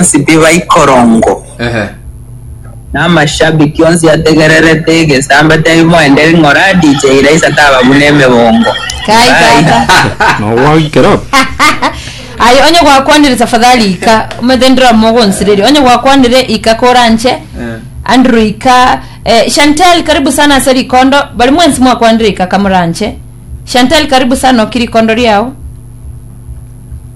bonsi tibaikorongo. Ehe. Na amashabiki onsi ategererete egesaamba taimoenderi ng'ora DJ Raisa taba buna emebongo. Kai Barai. tata. Nogwagikera abo. Aye onye gwakwanire tafadhali ika omanyete ndira mogo nsiriri onye gwakwanire ika koranche Andrew ika eh, Chantel karibu sana ase rikondo bari mwensi mwakwanire ika kamoranche Chantel karibu sana oki rikondo riao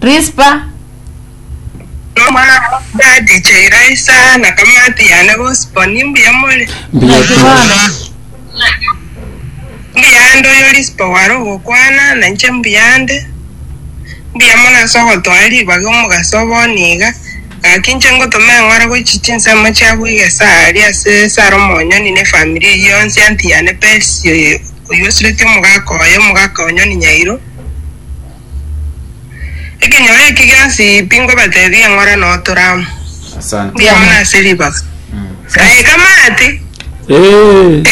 Rispa, Omwana wa Gadi chaira Isaya na kamati yane bonsi boni, mbuya more. Mbuya Naki tore. bono. Mbuya ande oyo Rispa ware ogokwana, na inche mbuya ande. Mbuya more ase ogotwara ribaga omogaso obo niga, Gaki inche ngotoma eng'ora goichi chinsemo chiabo iga esari ase esara omonyoni nefamiri eyio yonsi anti yane Persi oyo oyio osireti omogaka oye omogaka onyoni nyairo ekenyoro eki gionsi pi ngobatebi eng'ora na otoramu Asante. mbuya mono ase ribaga Aye kamati Ee.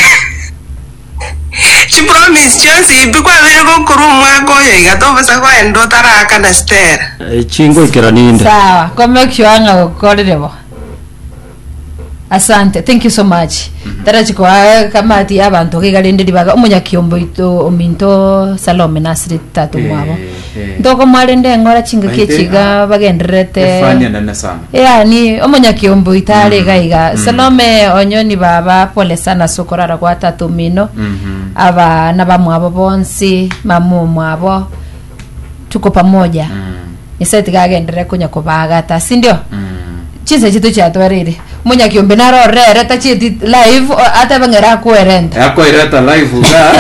Chipromise chionsi pi kwabeire gokorwa omwaka oyo iga tobasa goenda otaraakana Stella. Echi ngoikera ninde. Sawa kombe kiona gokorire bo. Asante thank you so much tara chikoa kamati ya banto iga rende ribaga omunya kiomboito ominto Salome nasiri tata omwabo. Ntokomoa rende engora chingaki echi iga bagendererete. Yaani omonyakiombe oito are iga iga. Salome onyoni baba pole sana ase okorara gwa tata omino. Aba na bamwabo bonsi, mama omwabo. Tuko pamoja. Nyasaye tiga agenderere konya kobagata. Sindio? Chinsa chito chiatoreire. Monyakiombe narorere tachieti live o- atebe ng'ere akoerente. Eh, akoireta live iga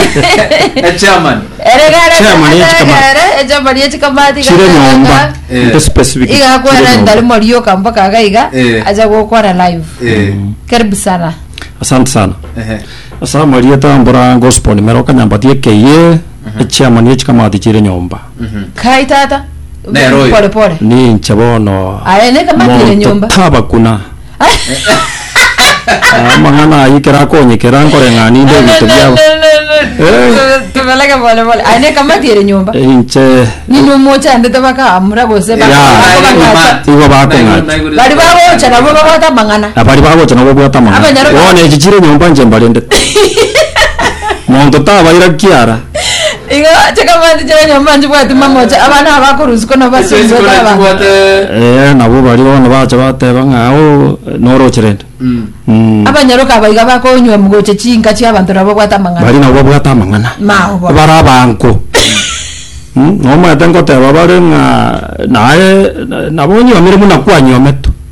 eh, chairman Ere gare Chairman ye atebe chikamati. gere echapari ye chikamati iga Chire atebe nyomba. ng'a, Eh. Nte specific. iga Chire akoerente nyomba. rimo rioka mpaka iga iga Eh. acha gokora live. Eh, Karibu sana. Asante sana. ehe. Ase amarieta mbora gospel nimero kanyambati aka eye. Chairman ye chikamati chire nyomba. Kaai tata. Nero oyo. Pole pole. Ninche bono Aye, neka matire nyomba. taba kuna amang'ana ayio ekero akonyekera nkore ng'a ninde ebinto biabo Eh. Tubeleke pole pole. Aye neka matire nyomba. inche Nini omochandete bakaamura gose baka- Ya, bakong'ata. igo bakong'ata. Bari bagocha nabo babwate amang'ana. abari bagocha nabo obwate amang'ana Abanyarwanda. bono echi chire nyomba inche mbarendete monto tabaira kiara Igo chikamati chi'abanyamama nchibwati mamocha, abana aba bakorusikwa nabo Ase basibigwe chikoro taba. chibwate Eh, nabo baria bono bacha bateba ng'a o noroche rende Mm. Mm. Abanyaroka aba iga bakonywa gocha chinka chi'abanto na babwate amang'ana. bari nabo babwate amang'ana Mao bono. bare abanko Mm, nomanyete ngoteba bare ng'a naye na- nabo onyomire buna kwanyometwe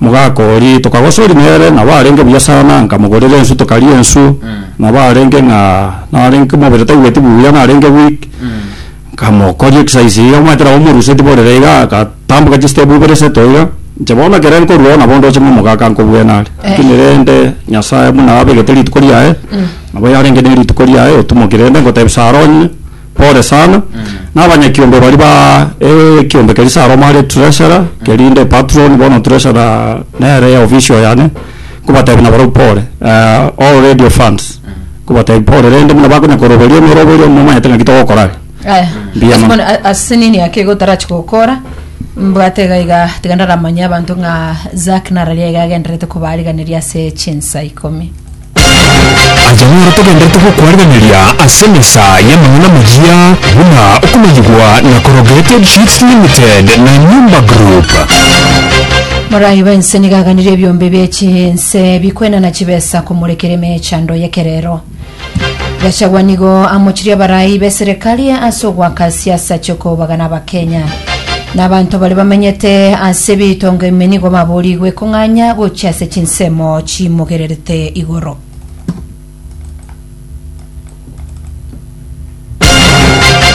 Mogaka oria, tokagosori nere, nabo arenge buya sana, nkamogorera ensu tokaria ensu, nabo arenge ng'a narenge omobere taigweti buya narenge weak, nkamokoria exercise iga omanyete nabo omoruse tiborere iga, agatamboka chistep ibere iseto iga, inche bono ekero nkorwa oo nabo ndoche ng'a omogaka nkobwene are, lakini rende Nyasaye buna abegete rituko riaye, nabo yarenge nerituko riaye otumokire rende ngotebia sara onye. Pore sana. Na abanyakiombe baria ba ekiombe keria Salomo are treasurer, keria inde patron, bono treasurer nere official yane, nkobatebia nabarabwo pore. Eh, all radio fans, nkobatebia pore rende buna bakonya koroberia omoroberio momanyete ng'aki togokora are. Aya, Mbuya ase mono. bono a- ase nini ake iga otarachi gokora mbwate iga iga tiga ndaramanye abanto ng'a Zack nararia iga agendererete kobariganeria ase chinsa ikomi Aye nere togenderete gokwarigereria ase mesa y'amang'ana amaya buna okomanyigwa na Corrugated Sheets Limited na Nyumba Group. Morai bwensi nigo aganire ebiombe bie chinse bikwenana chibesa komorekera emechando y'ekerero. Gachagua nigo amochirie abarai b'eserekari ase ogoaka siasa chi'okobagana Abakenya. Na abanto baria bamenyete ase ebitongo ime nigo baboorigwe kong'anya gochia ase chinsemo chimogererete igoro.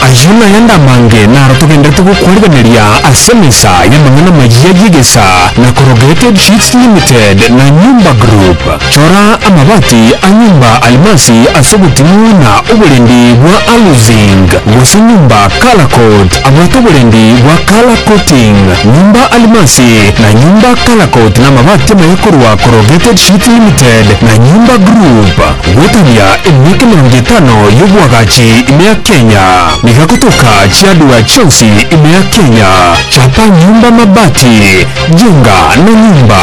Ayio nayande amange naro togenderete gokwarigereria ase emesa y'amang'ana amayia y'egesa na korogete Sheets Limited na Nyumba Group. Chora amabati a nyomba alimasi ase oboting'u na oborendi bwa aluzing, gose nyomba color coat abwate oborendi bwa color coating. Nyomba alimasi na nyomba color coat namabati amaya korwa Corrugated Sheet Limited na Nyomba Group. Goetania emiaka emerongo etano y'obwagachi ime ya Kenya niga gotoka chiadura chionsi ime ya Kenya. Chapa nyomba mabati, jenga na nyomba.